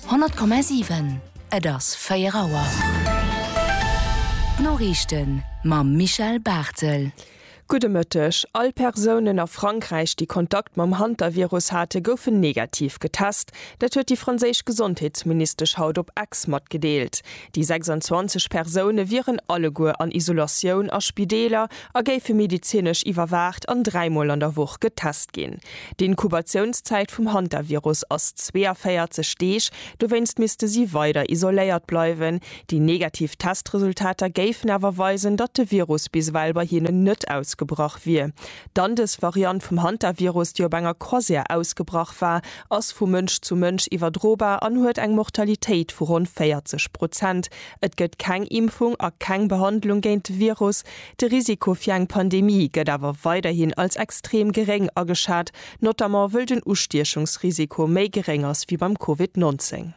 100,7 Et ass 4 Auer. D'Noriichten mam Michel Barthel. Gudde Mëtteg. All Persounen a Frankräich, déi Kontakt mam Hantavirus hate, goufen negativ getest. Dat huet déi franséisch Gesondheetsministesch haut op X matgedeelt. Déi 26 Persoune wieren alleguer an Isolatioun a Spideeler a géife medezinesch iwwerwaacht an dräimol an der Woch getest ginn. D'Inkubatiounszäit vum Hantavirus ass 42 Deeg, dowéinst misste si weider isoléiert bleiwen. Déi negativ Testresultater géifen awer weisen, datt de Virus bis ewell bei hinnen net ausgebrach wier. D'Andes-Variant vum Hantavirus, déi op enger Croisière ausgebrach war, ass vu Mënsch zu Mënsch iwwerdrobar an huet eng Mortalitéit vu ronn 40 Prozent. Et gëtt keng Impfung a keng Behandlung géint de Virus. De Risiko fir eng Pandemie gëtt awer weiderhin als extrem geréng ageschat, notamment wëll den Ustiechungsrisiko méi geréng ass wéi beim Covid 19.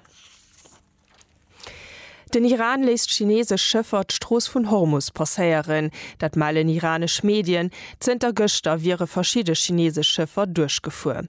Den Iran léisst chineesesch Schëffer d'Strooss vun Hormus passéieren. Dat mellen iranesch Medien. Zënter gëschter wiere verschidde chineesesch Schëffer duerchgefuer.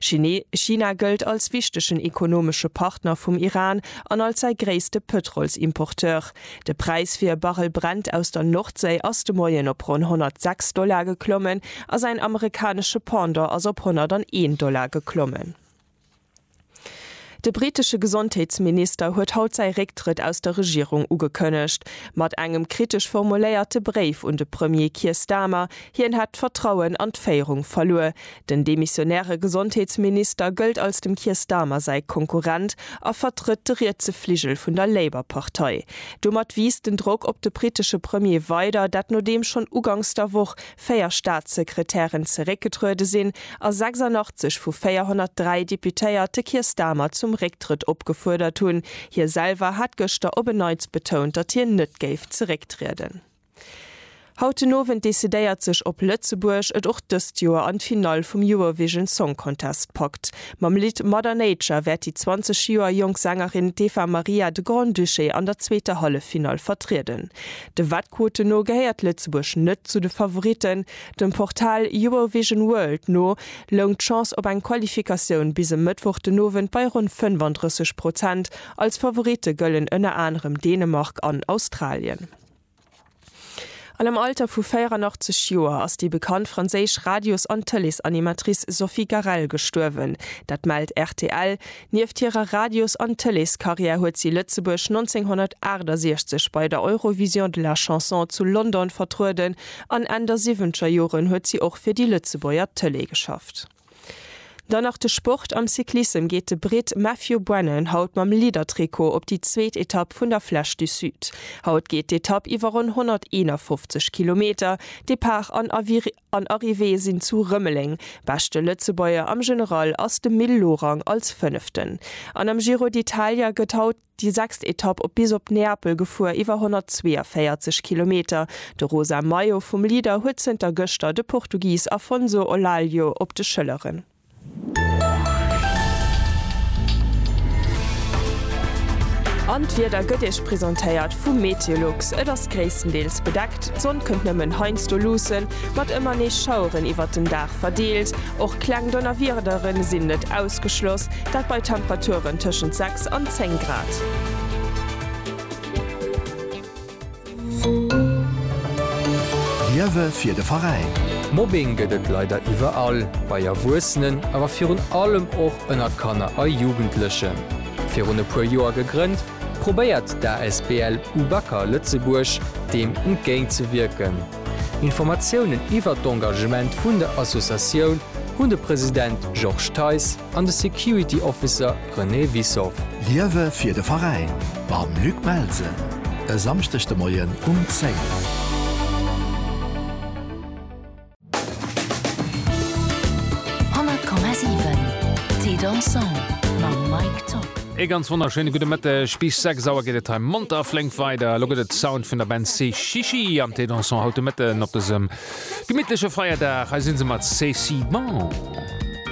Chine, China gëllt als wichtegen ekonomesche Partner vum Iran an als säi gréisste Pëtrolsimporteur. De Präis fir e Barrel Brent aus der Nordséi ass de Moien op ronn 106 Dollar geklommen a säin amerikanesche Pendant ass op 101 Dollar geklommen. De britesche Gesondheetsminister huet haut säi Récktrëtt aus der Regierung ugekënnegt, mat engem kritesch formuléierte Bréif un de Premier Keir Starmer. Hien hätt d'Vertrauen an d'Féierung verluer. Den demissionäre Gesondheetsminister gëllt als dem Keir Starmer säi Konkurrent a vertrëtt de rietse Fligel vun der Labour-Partei. Domat wiisst den Drock op de britesche Premier weider, dat nodeem schonn ugangs der Woch véier Staatssekretären zeréckgetruede sinn a 86 vu 403 Deputéiert de Keir Starmer zum Récktrëtt opgefuerdert hunn. Hie selwer hat gëschter op en Neits betount, datt hien net géif zerécktrieden. Haut den Owend decidéiert sech, ob Lëtzebuerg et och dëst Joer an d'Finall vum Eurovision Song Contest packt. Mam Lidd Mother Nature wäert déi 20 Joer jonk Sängerin d'Eva Maria de Grand-Duché an der zweeter Halleffinall vertrieden. De Wettquoten no gehéiert Lëtzebuerg net zu de Favoritten. Dem Portal Eurovision World no loung d'Chance op eng Qualifikatioun bis e Mëttwoch den Owend bei ronn 35 Prozent. Als Favoritte gëllen ënner anerem Dänemark an Australien. An am Alter vu 84 Joer ass déi bekannt franséisch Radios an Tëleesanimatrice Sophie Garrel gestuerwen. Dat mellt rtl. Nieft hirer Radios an Tëleescarrière huet si Lëtzebuerg 1968 bei der Eurovision de la Chanson zu London vertrueden an Enn der siwwentger Joren huet si och fir déi Lëtzebuerger Tëlee geschafft. Dann nach de Sport, Am Cyclissem geet de Britt Matthew Brennan haut mam Leader-Trikot op déi zweet Etapp vun der Flèche du Sud. Haut geet d'Etapp iwwer ronn 151 Kilometer, Depart an An Arrivée sinn zu Rëmeleng. Beschte Lëtzebuerger am General ass de Mil Lorang als Fënneften. An am Giro d'Italia gëtt haut déi sechst Etapp op bis op Neapel gefuer, iwwer 142 Kilometer. De rosa Maillot vum Leader huet zënter gëschter de Portugis Afonso Olallio op de Schëlleren. An d'Wieder gëtt Iech presentéiert vum Meteolux. Et ass gréisstendeels bedeckt, d'Sonn kënnt nëmmen heiansdo luussen, mat ëmmer nees Schaueren iwwert den Dag verdeelt. Och kleng Donnerwiedere sinn net ausgeschloss, dat bei Temperaturen tëschent 6 an 10 Grad. Liewe fir de Veräin! Mobbing gëtt et leider iwwerall, bei Erwuessenen, awer virun allem och ënner Kanner a Jugendlechen. Virun e puer Joer gegrënnt, probéiert d'ASBL UBAKA Lëtzebuerg deem entgéint ze wierken. Informatiounen iwwert d'Engagement vun der Associatioun hunn de President Georges Theis, an de Security Officer René Wissow. Liewe fir de Veräin mam Luc Melsen e Samschdeg de Moien um 10. Ee ganz wonnerschéine gudde Mëtteg. Bis 6 Auer geet et hei monter a flénk weider. Elo gëtt et Sound vun der Band Sechichi am Thé Dansant haut de Mëtten op dësem gemittleche Feierdag. Hei si se mat C'est si bon.